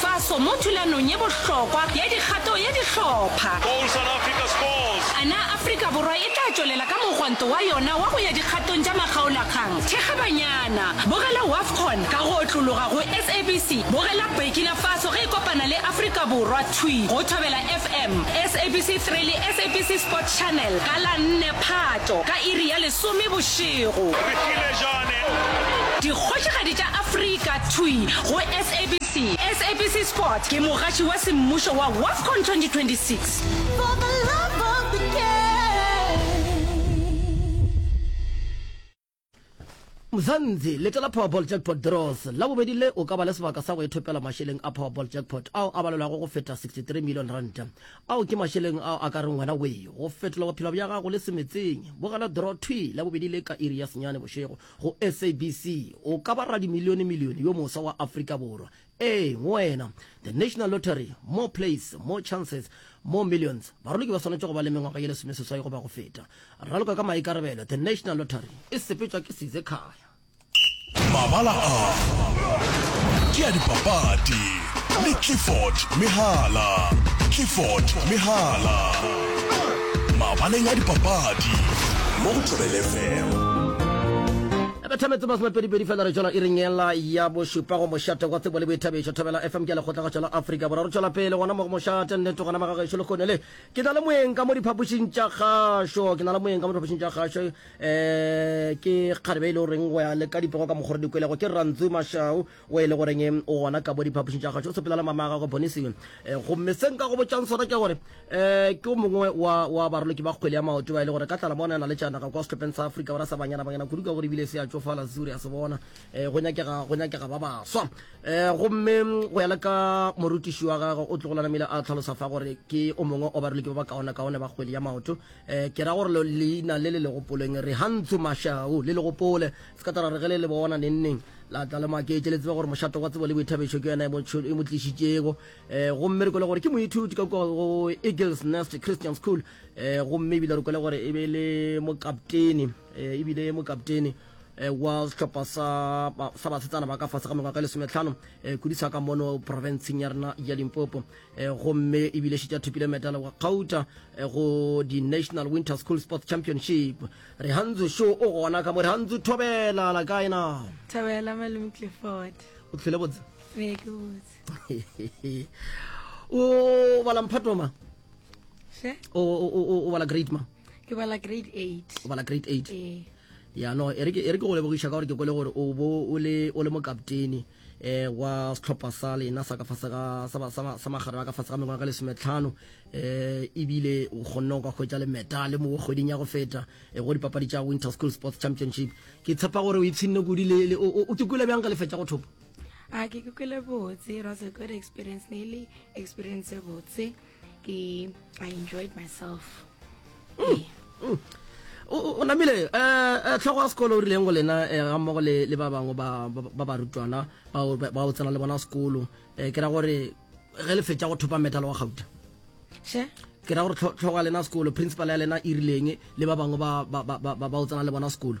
Faso mo thulanong ye bohlokwa ya dikgato ya dihlopha. Goal South Africa scores! A na Afrika Borwa e tla tšwelela ka mogwanto wa yona wa go ya dikgatong tša makgaolakgang? Thekga banyana! Bogela Wafcon ka go otlologa go SABC. Bogela Burkina Faso ge e kopana le Afrika Borwa thwi go Thobela FM, SABC 3 le SABC Sport Channel ka la 4 Phato ka iri ya lesome bošego. Re file Jane! Dikgošigadi tša Afrika thwi go SABC. SABC, SABC Sport ke mogatši wa semmušo wa WAFCON 2026. Mzanzi, letela Powerball Jackpot Draws la bobedi le o ka ba le sebaka sa go ithopela mašeleng a Powerball Jackpot ao a balelwago go feta 63 million rand. Ao ke mašeleng ao a ka reng wena wee go fetola bophelo bja gago le semetseng. Bogela draw thwi la bobedi le ka iri ya senyane bošego Go SABC, o ka ba radimilionemilione yo moswa wa Afrika Borwa. Ee, go wena. The National Lottery, More Plays, More Chances, More Millions. Baroloki ba swanetše go ba le mengwaga ye lesomeseswai goba go feta. Raloka ka maikarabelo, The National Lottery e sepetšwa ke Sizekhaya. Mabala a ke a dipapadi. le Clifford Mehala. Clifford Mehala. Mabaleng a dipapadi mo go Thobel FM. E bethametse masomepedipedi fela re tšwela iring ela ya bošupa go mošate wa tsebo le boithabišo thobela fm ke lekgotlagatšo la afrika borwa re tšwela pele gona mo go mošate nnete gona magagešo le kgone le ke na le moeng ka mo diphapošing tša gašo ke na le moeng ka mo diphapošing tša gašo um ke kgarebe e le goreng go ya le ka dipego ka mokgore dikwelego ke rantsu mašau O e le goreng o gona ka bo diphapošing tša gašo o sepela le mama a gagwe Bonisi. Eh, gomme se nka go botšang sona ke gore eh, ke o mongwe wa, wa baroloki ba kgwele ya maoto ba e le gore ka tlala mona na le tšanaga kwa sehlopheng sa Afrika Borwa sa Banyana Banyana kudu ka gore ebile se a tšofala Zuri a se bona eh, go nyakega go nyakega ba baswa eh, gomme mm, go ya le ka morutiši wa gagwe o tlogo lanamile a tlhalosa fa gore ke o mongwe wa baroloki ba ba kaone kaone ba kgwele ya maoto eh, ke ra gore leina le le legopoleng re hantsho mashau le legopole Sekatara re ge le le bona nengneng la tla le maketše le tseba gore mošato wa tsebo le boithabetšo ke yona e mo tlišitšego um eh, gomme re kwele gore ke moithuti ka kua go eagles nest christian school um gomme ebile re kwele gore e be le mokaptene um ebile mokaptene Eh, wa sehlopha sa basetsana ba ka fase ga mengwaga e lesometlhano eh, kudu sa ka mono profenseng ya rena ya limpopo eh, gomme ebile šetša thopile medal wa kgauta go di-national winter school sports championship Rehantsu šo o gona ka mo? Rehantsu Thobela la kae na? Thobela Malome Clifford. O tlhole botse? Ee ke botse. O bala mphato ma? She? O o bala grade ma? Ke bala grade 8. O bala grade 8. Ee. Ya no e re ke go lebogiša ka gore ke kwele gore o bo o le o le mokaptene. eh wa setlhopha sa lena sa ka fase ga sa magare ka fase ga mengwaga ka lesometlhano eh ebile o kgonne go ka hwetša le medale mo kgweding ya go feta eh, go dipapadi tša winter school sports championship ke tshepa gore o ipshinne kudi le o ke kwele bjang ka le fetša go thopa a ke ke kwele botse ra se kwele experience ne le experience botse i enjoyed myself mm. Mm. o namile um tlhogo ya sekolo o rileng go lena eh, ga mmogo le ba bangwe ba barutwana ba o tsena le bona sekolo um ke ra gore ge le fetsa go thopa metalo wa gauta ke ra gore tlhogo ya lena sekolo principal ya lena e rileng le ba bangwe ba o tsena le bona sekolo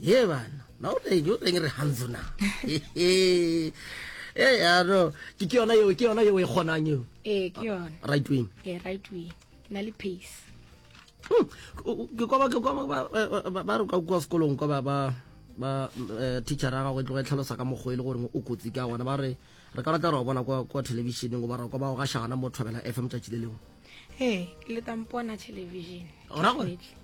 ye bana na o reng o reng re hanzo na e yaro ke ke yona yeo ke yona yeo e kgonang eo ee ke yona right wing ee right wing ke na le pace hmm, ke kwa ke kwa ba re kwa kwa sekolong kwa ba ba ba eh, teacher ga go tloga e tlhalosa ka mokgo e le gore o kotsi ka gona ba re re ka batla re bona kwa kwa televisioneng go ba ra kwa ba go ga shagana mo thobela fm tšatši le lengwe ee ke le tampona television ora gore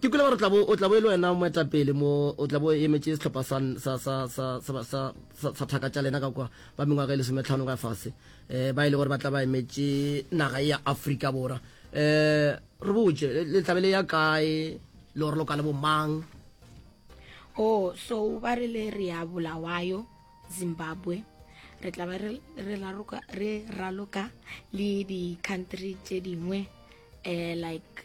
ke kule gore o tlabo e le wena moetapele mo o tlabo e emetše setlhopha sa thaka tša lena ka kwa ba mengwaga e lesometlhano ka fase um ba e le gore ba tla ba emetše naga e ya afrika borwa um re botse le tlabe le ya kae le gore lo ka le bomang o oh, so ba re le re ya bolawayo zimbabwe re tla ba re raloka le di-country tše dingwe um like